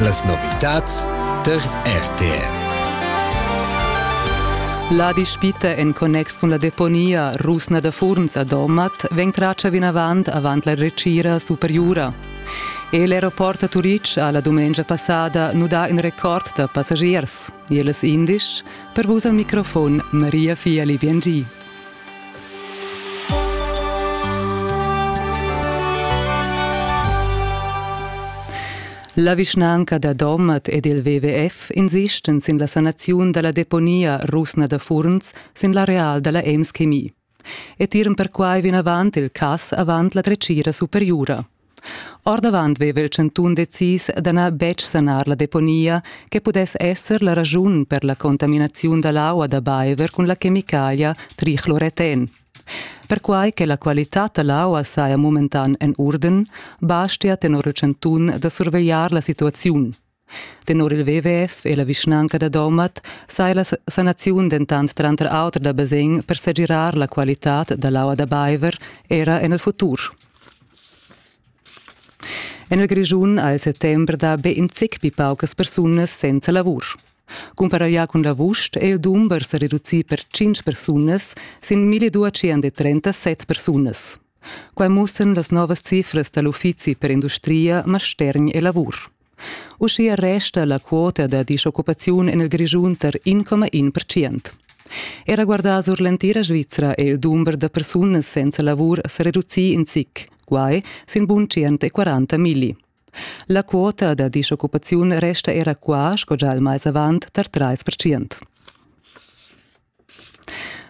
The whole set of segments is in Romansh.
Las novitads tar RTR. La dispita en connex cun la deponia rusna da Furns a Domat vegn tratga vinavant avant la retgira superiura. E l'aeroport a Turitg ha la dumengia passada nudà in record da passagiers. Iel es indisch, per vus al microfon Maria Fiali Biengi. La vischnanca da Domat ed il WWF insistan sin la sanaziun dalla deponia rusna da Furns sin l'areal dalla Ems Chemie. E tiran perquai vinavant il cass avant la dretgira superiura. Ordavant veva il chantun decis da na betg sanar la deponia che pudess esser la raschun per la contaminaziun da l'aua da baiver cun la chemicalia trichloreten. Perquai che la qualitad da l'aua saja momentan en urden, bastia tenor il chantun da survegliar la situaziun. Tenor il WWF e la vischnanca da Domat saja la sanaziun dentant tranter auter da basegn per segirar la qualitad da l'aua da baiver era en il futur. En il Grischun ha il settember dà be in zic pli paucas persunas senza lavur. Cumparaglià cun l'avust è il dumber sa reducì per 5 persunas sin 1237 persunas. Quai mussan las novas cifras da l'Uffizi per industria, mastergn e lavur. Uschia resta la quota da dischoccupaziun en il Grischun tar 1,1 percent. Era guardà sur l'entira Svizra è il dumber da persunas senza lavur sa reducì in zic, guai sin bun 140 milli. La quota da dischoccupaziun resta era qua, sco già il mais avant, tar 3 percent.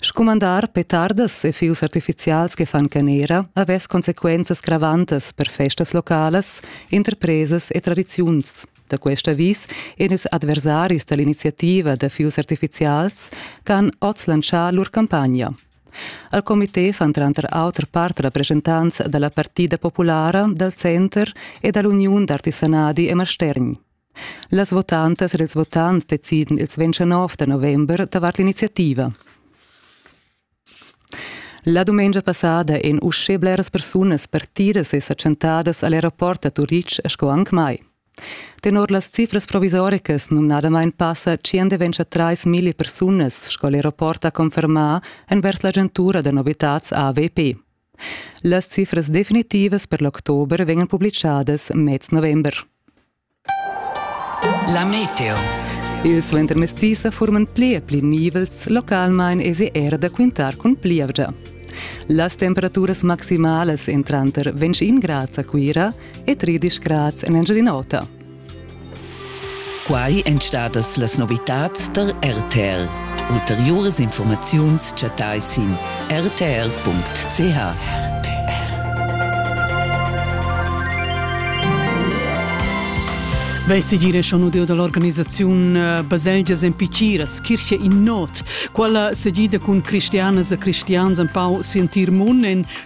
Scumandar petardas e fius artificials che fan canera havess consequenzas gravantas per festas localas, interpresas e tradiziuns. Da quest avis ein ils adversaris dall'iniziativa da fius artificials che han oz lantschà lur campagna. Al comité fan tranter auter part rappresentants dalla Partida populara, dal Center e dall'Uniun d'artisanadi e mastergn. Las votantas ed ils votants decidan ils 29 da november davart l'iniziativa. La dumengia passada ein uschè bleras persunas partidas e sa tschentadas al aeroport da Turitg sco anc mai. Tenor las cifras provisoricas numnadamain passa 123.000 persunas, sco l'aeroport ha confermà, envers l'agentura da novitads AWP. Las cifras definitivas per l'october vegnan publichadas mez november. La meteo. Il suentermezdi sa forman pli e pli nivels, localmain esi era da quintar cun plievgia. Las temperaturas maximalas entranter 25 grads a Cuira e 13 grads en Engiadin'Ota. Quai èn stadas las novitads tar RTL. Ulteriuras informaziuns chattai sin rtr.ch. Vei segire schon deo dall'organisaziun eh, Baselgias en Pichiras, Kirche in Not, quella segida cun cristianas e cristians empau sentir mun en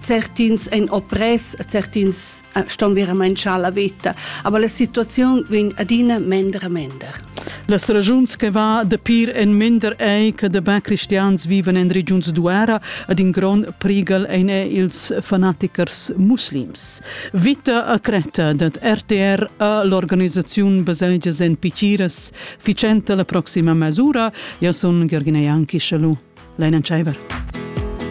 Certins ein oppress, certins eh, ston verament schar la veta, aber la situaziun vegn adina mender e mender. Las regiuns che va de pir en mender ei che de ba cristians viven en regiuns duera ad in grond prigel ein è ils fanatichers muslims. Vita a creta dat RTR a l'organisazione Baselgias en Pichiras ficenta la prossima mesura. Io sono Georgina Janki, shalom. Leina Scheiber.